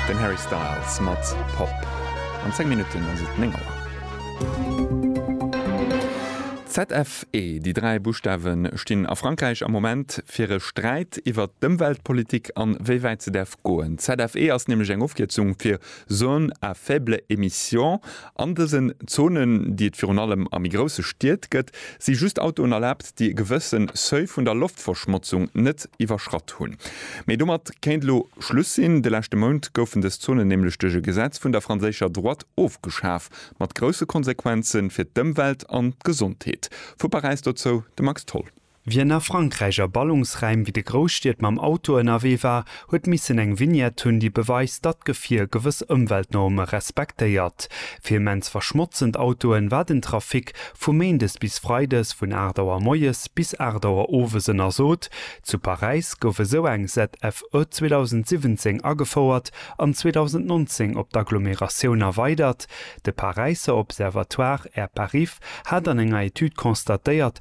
Den Harry Styles mat Pop. An 10 Minutten ass et 9 Auer. ZFE, Déi dräi Buschtawe stinn a Frankräich am Moment fir e Sträit iwwert d'Ëmweltpolitik an wéi wäit se däerf goen. ZFE ass nämlech eng Ofkierzung fir Zones à faibles émissions An dësen Zonen, déi et virun allem a méi grousse Stied gëtt, si just Autoen erlaabt, déi e gewësse Seuil vun der Loftverschmotzung net iwwerschratt hunn. Mee domat kéint elo Schluss sinn. De leschte Mount goufen dës Zonen nämlech duerch e Gesetz vun der franséischer Droite ofgeschaf, mat grousse Konsequenze fir d'Ëmwelt an d'Gesondheet. Vu Paräis dozou de Max Tholl. Wien a Frankräich a Ballungsraim wéi de Grousstied mam Auto ënnerwee war, huet missen eng Vignette hunn, déi beweist, datt d'Gefier gewëss Ëmweltnorme respektéiert. Fir immens verschmotzend Autoen war den Trafic vu méindes bis freides vun 8 Auer moies bis 8 Auer owes ënnersot. Zu Paräis gouf esou eng ZFE 2017 agefouert an 2019 op d'Agglomeratioun erweidert. De Paräisser Observatoire Air Parif hat an enger Etüd constatéiert,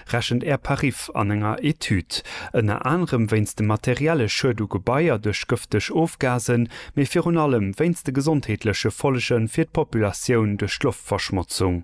rechent Air Parif an enger Etüd ënner anerem wéinst dem materielle Schued u Gebaier duerch gëfteg Ofgasen, mee virun allem wéinst de gesondheetleche Follege fir d'Populatioun duerch d'Loftverschmotzung.